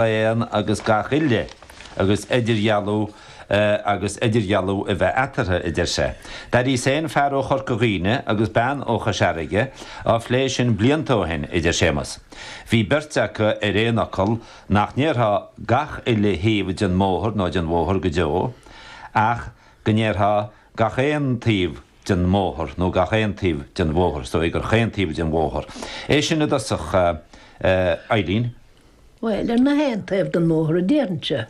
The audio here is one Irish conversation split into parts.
aon agus gach uile agus idirdhealú agus idirdhealú a bheith eatarthu, a deir sé. Tharraing fear ó Chorca Dhuibhne agus bean ó Chois Fharraige a phlé sin blianta ó shin, a deir Séamus. Bhí beirt acu ar aon fhocal nach ndéarfaí gach uile thaobh den mbóthar nó den bhóthar go deo ach go ndéarfaí gach aon taobh den mbóthar nó gach aon taobh den bhóthar, is dóigh gur chaon taobh den bhóthar é sin i dtosach, a Eibhlín. Bhuel, ar na haon taobh den mbóthar a déarfainnse.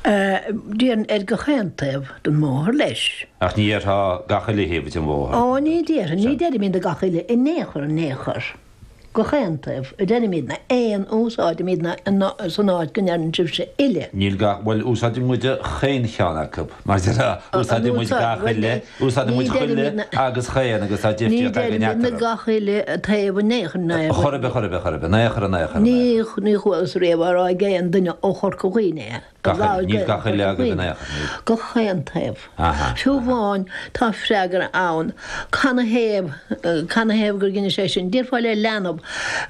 Déarfainn ar gach aon taobh den mbóthar leis. Ach ní déarfá gach uile thaobh den bhóthar. Ó, ní déarfainn, ní deirimidne gach uile, in aon chor, in aon chor. gach aon taobh a deirimíd na aon úsáidimíd ná san áit go ndeireann sibhse uile. Níl gach bhuel úsáidimíd chaon cheann acu, mar deir úsáidimíd gach uile, úsáidimíd chuile agus chaon agus tá difríocht againn eatarthu. Ní deirimid gach uile taobh in aon chor, chor ar bith, chor ar bith, chor ar bith, in aon chor, in aon chor, in aon chor. Ní chualas riamh á rá ag aon duine ó Chorca Dhuibhne é. Gach uile, níl gach uile agaibh in aon chor, níl. Gach aon taobh. Fiú amháin, tá freagra ann, canathaobh, canathaobh gur dheinis é sin? Déarfá le leanbh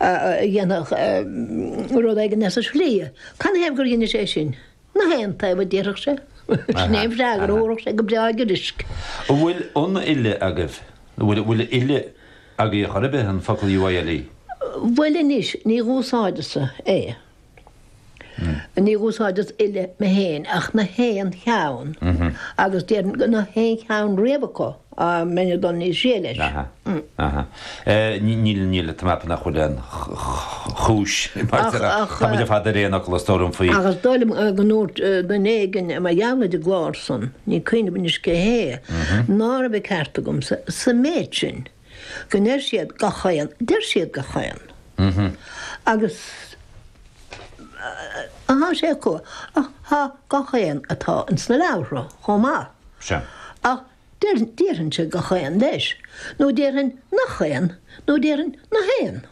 a dhéanfadh rud éigin as a slí, canathaobh gur dheinis é sin? Na haon taobh, a déarfadh sé. Sin é an freagra a thabharfadh sé go breá giorraisc. An bhfuil an uile agaibh, an bhfuil an uile agaibh ar chor ar bith, an focal UILE? Bhuel anois, ní dh'úsáideas-sa é. Ní úsáideas uile mé féin ach na haon cheann agus déarfainn go na haon cheann riamh acu dá mbeinn ag dul níos sia leis. Níl, níl, tá mé ag ceapadh nach bhfuil aon chúis mar tá muid ar fad ar aon fhocal a stór faoi. Ach is dóigh liom go ndúirt duine éigin mar gheall ar an gclár san, ní cuimhním anois cé hé, ná raibh an ceart agamsa sa méid sin, go ndeir siad gach aon, deir siad gach aon, agus tá sé acu, ach gach aon atá ins na leabhartha chomh maith. Sea. Ach déarfainn, déarfainnse gach aon, leis, nó déarfainn nach aon, nó déarfainn nach aon.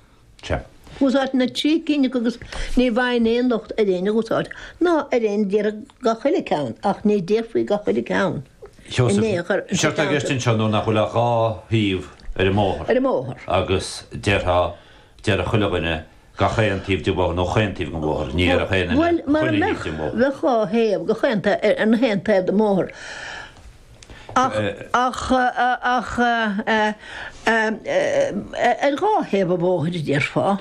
Sea. Úsáidtear na trí cinn acu agus ní bhfaighinn aon locht ar éinne a dh'úsáid ná ar éinne a déarfadh gach uile ceann ach ní déarfaí gach uile ceann in aon chor. Séard atá i gceist ansin anois nach bhfuil ach dhá thaobh ar an mbóthar agus déarfá, déarfadh chuile dhuine gach aon taobh den bhóthar nó chaon taobh den bhóthar, ní dhéarfadh aon duine chuile thaobh den bhóthar. Bhuel, mara mbeadh, bheadh dhá thaobh, gach aon taobh, ar na haon taobh den mbóthar. ach ar dhá thaobh an bhóthair, déarfá,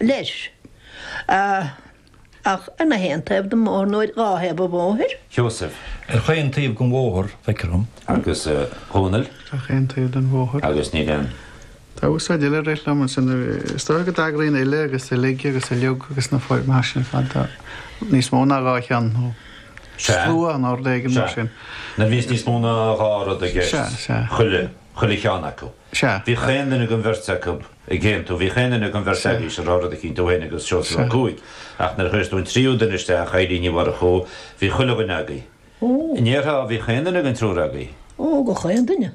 leis, ach ar nach aon taobh den mbóthar nó ar dhá thaobh an bhóthair. Sheosaimh. Ar chaon taobh den bhóthar, feictear dhom. Agus a Dhónaill. Ar achan taobh den bhóthar. Agus níl aon. Tá úsáid eile ar leith liom ansin, is dócha go dtagraíonn uile agus uilig agus uiliog agus na foirmeacha sin ar fad do níos mó ná dhá cheann nó. Sea. Slua in ord éigin, mar sin. Sea. Nuair bhíos níos mó ná dhá rud i gceist. Sea, sea. Chuile, chuile cheann acu. Sea. Bhí chaon duine den bheirt acu ag aontú, bhí chaon duine den bheirt agaibh a rá rud eicínt, tú fhéin agus Seosamh Ó Cuaig, ach nuair a chuireas tú an tríú duine isteach, Eibhlín Ní Mhurchú, bhí chuile dhuine agaibh. Ó! Ní déarfá, bhí chaon duine den triúr agaibh. Ó, go chaon duine.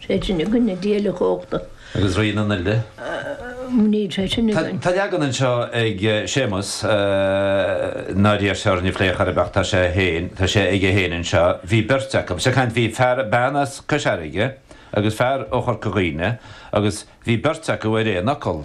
sé sin i gcoinne Dia uilechumhachtach. Agus Rí na nUile. Mhínigh sé sin i gcoinne. Tá leagan anseo ag Séamus nár iarr sé orainn a phlé chor ar bith ach tá sé féin, tá sé aige féin anseo. Bhí beirt acu, is ag caint, bhí fear, bean as Cois Fharraige agus fear ó Chorca Dhuibhne agus bhí beirt acu ar aon fhocal.